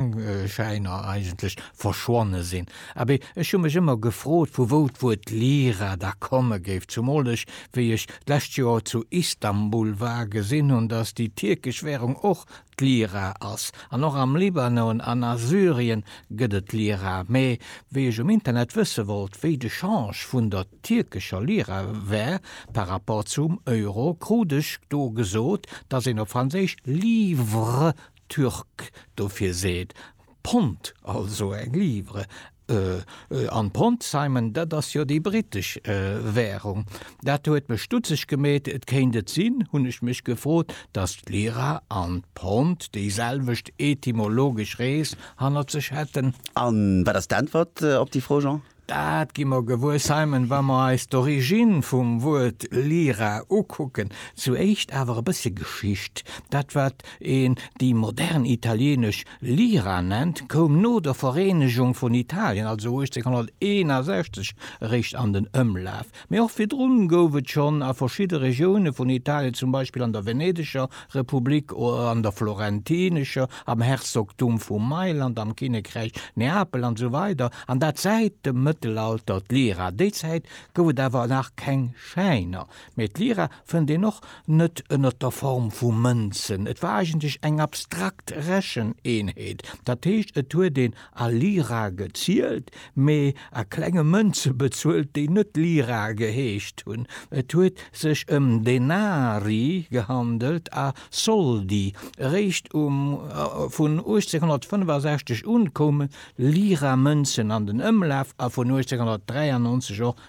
Schäiner eigentlech verschwonne sinn. Abee, ech hu mech ëmmer gefrot, vu wou d'Wuert Lira da komme géif, zumol ech, wéi ech d'lescht Joer zu Istanbul war, gesinn hunn, datt déi tierkesch Währung och d'Lira ass. An och am Libanon an a Syrien gëtt et d'Lira. Mä wéi ech um Internet wësse wollt, wéi de Change vun der tierkescher Lira wär par rapport zum Euro, krut ech do gesot, datt een op Franséisch livre Türk dofir seet, Pond, also eng Livre. An Pond, Simon, dat ass jo déi britesch Währung. Dat huet mech stutzeg gemeet. Et kéint et sinn, hunn ech mech gefrot, datt d'Lira an d'Pond déiselwecht etymologesch Rees hannert sech hätten? A wat ass d'Äntwert op déi Fro, Jean? Dat gi mer gewuer, Simon, wa mer eis d'Origine vum Wuert Lyra ukucken. Zu éischt awer e bëssche Geschicht, Dat, wat een déi modern italienesch Lira nennt, koum no der Vereenegung vun Italien, also 1861, eréischt an den Ëmlaf. Mee och virdrun gouf et schonn a verschidde Regioune vun Italien, zum Beispill an der Venedeger Republik oder an der Florentinescher, am Herzogtum vu Mailand, am Kinnekräich Neapel an esou weider an dat säit dem Mëttelalter d'Lira. Déi Zäit gouf et awer nach keng Schäiner, mee d'Lira fënnt een och net ënnert der Form vu Mënzen. Et war eigentlech eng abstrakt Recheneenheet, dat heescht et huet een A Lira gezielt, mee a klenge Mënze bezuelt, déi net Lira geheescht hunn. Et huet sech ëm Denari gehandelt a Soldi. Eréischt um vun 1865 un koume Lira-Mënzen an den Ëmlaf a vun 1893 och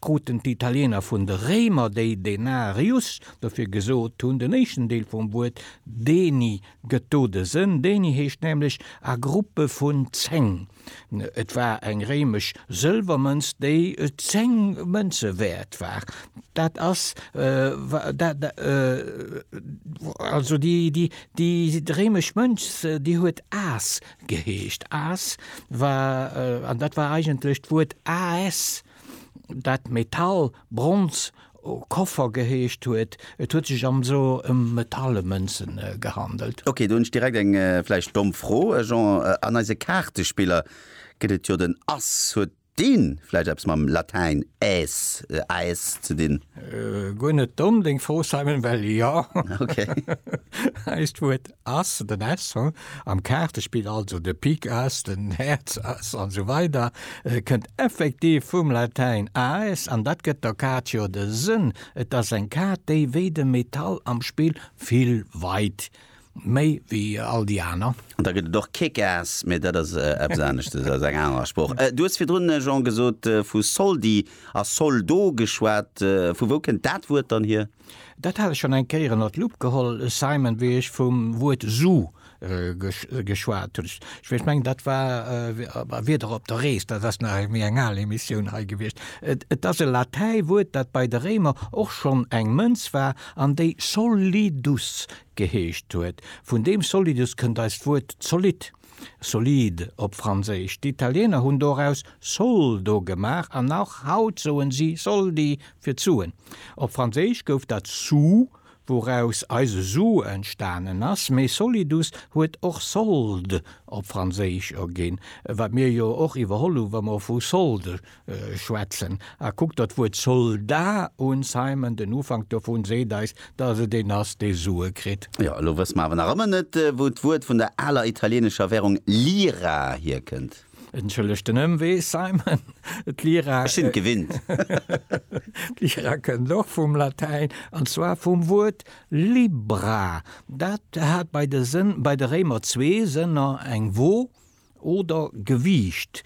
kruten d'Italiener vun de Réimer déi denarius, dofir gesot hunn, den éischten Deel vum Wuert deni gëtt do de Sënn, deni heescht nämlech a Gruppe vun zéng. Et war eng réimesch Sëlwermënz, déi zéng Mënze wäert war. Dat ass also déi réimesch Mënz, déi huet as geheescht, as war, an dat war eigentlech d'Wuert AS. dat Metall, Bronz, Koffer geheescht huet, et huet sech am so ëm Metallemënzen gehandelt. Ok, do hunn ech direkt eng vläicht domm Fro, Jean, an eise Kaartespiller gëtt et jo den Ass, huet deen vläicht eppes mam Latäin Äs, Aes, ze dinn? Guer net domm deng Fro Simon, well jo, eist Wuert As, den S ho, am Kaartespill, also de Pik As, den Häerz As an esou weider, kënnt effektiv vum Latäin Aes an dat gëtt der Kaart jo de Sënn. Et as eng Kaart, déi wéi de Metall am Spill vill weit méi wéi all déi aner. An da gëtt et och Kick Ass, mee dat as eppes aneschtes, as eng aner Sprooch. Du hues virdrun, Jean, gesot, vu Soldi a Soldo geschwat. Vu wou kënnt dat Wuert dann hier? Dat hat ech schon eng Kéier ënnert d'Lupp geholl, Simon, wéi ech vum Wuert Su geschwat hunn. Ech mengen, dat war Wieder op der Rees, dat ass nach méi eng al Emissioun hei gewiescht. Et ass e Latäiwuert, dat bei de Réimer och schonn eng Mënz war an déi solidus geheescht huet. Vun deem solidus kënnt eist Wuert zolidd. Solide op Franséisch. D'Italiener hunn doraus Soldo gemaach an och haut soen si Soldi fir d'Suen. Op Franséisch gouf dat sou, wouraus eise Su entstanen ass, mee solidus huet och solde op Franséisch erginn, wat mir jo och iwwerholl hu wa mer vu solde schwätzen. A kuckt der d'Wuert Soldat un, Simon, den Ufank dovun seet eis, dass et een ass, dee Sue kritt. Jo, elo wësse mer awer nach ëmmer net, wou d'Wuert vun der aler italienescher Währung Lira hierkënnt. Entschëllegt den Ëmwee, Simon. D'Lira. Ech sinn et gewinnt. D'Lira kënnt och vum Latäin, an zwar vum Wuert Libra. Dat hat bei de Réimer zwee Sënner, eng Wo, oder Gewiicht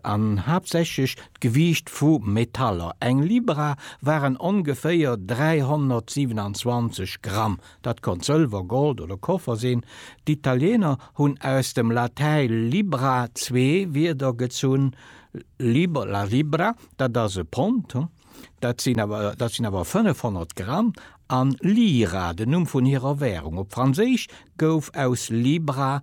an haaptsächlech d'Gewiicht vu Metaller. Eng Libra waren ongeféier 327 Gramm, dat konnt Sëlwer, Gold oder Koffer sinn. D'Italieener hunn aus dem Latäi libra zwee Wierder gezunn, liber, la libra, dat ass e Pond, dat sinn awer dat sinn awer 500 Gramm, an lira, den Numm vun hirer Währung. Op Franséisch gouf aus libra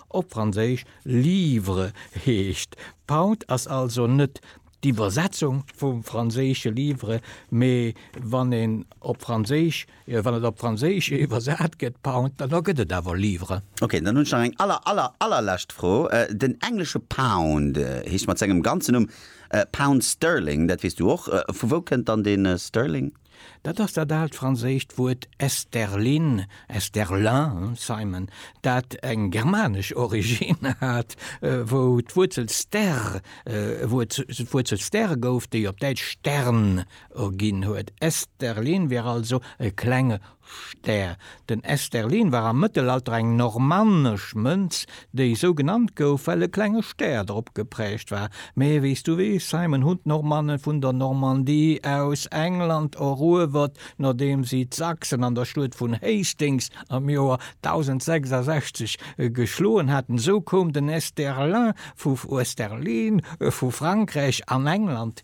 Op Franséisch livre heescht Pound, ass also net d'Iwwersetzung vum franséische livre, mee wann een op Franséisch, wann et op Franséisch iwwersat gëtt Pound, dann da gëtt et awer livre. Ok, dann hunn ech nach eng aller, aller, allerlescht Fro. Den englesche Pound heescht mat sengem ganzen Numm Pound Sterling, dat weess du och. Vu wou kënnt dann dee Sterling? Dat ass dat aalt franséischt Wuert Esterlin, Esterlin, Simon, dat eng germanesch Originn hat, wou d'Wuerzel ster Wuerzel ster gouf, déi op Däitsch Stern erginn huet. Esterlin wier also e klenge Stär. Den Esterlin war am Mëttelalter eng normannesch Mënz, déi esou genannt gouf, well e klenge Stär drop geprägt war. Mee wéi s du weess, Simon, hunn d'Normannen vun der Normandie aus England eruewert, nodeem si d'Sachsen an der Schluet vun Hastings am Joer 1066 geschloen haten. Esou koum den Esterlin vu Esterlin vu Frankräich an England.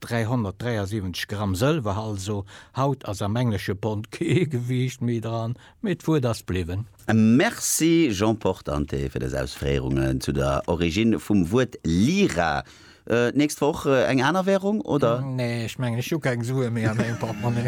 373 Gramm Sëlwer also, haut ass am englesche Pond kee Gewiicht méi dran, mee d'Wuert ass bliwwen. Merci Jean Portante fir dës Ausféierungen zu der Origine vum Wuert Lira. D'nächst Woch eng aner Währung, oder? Nee, ech mengen ech hu keng Sue méi a mengem Portmonni.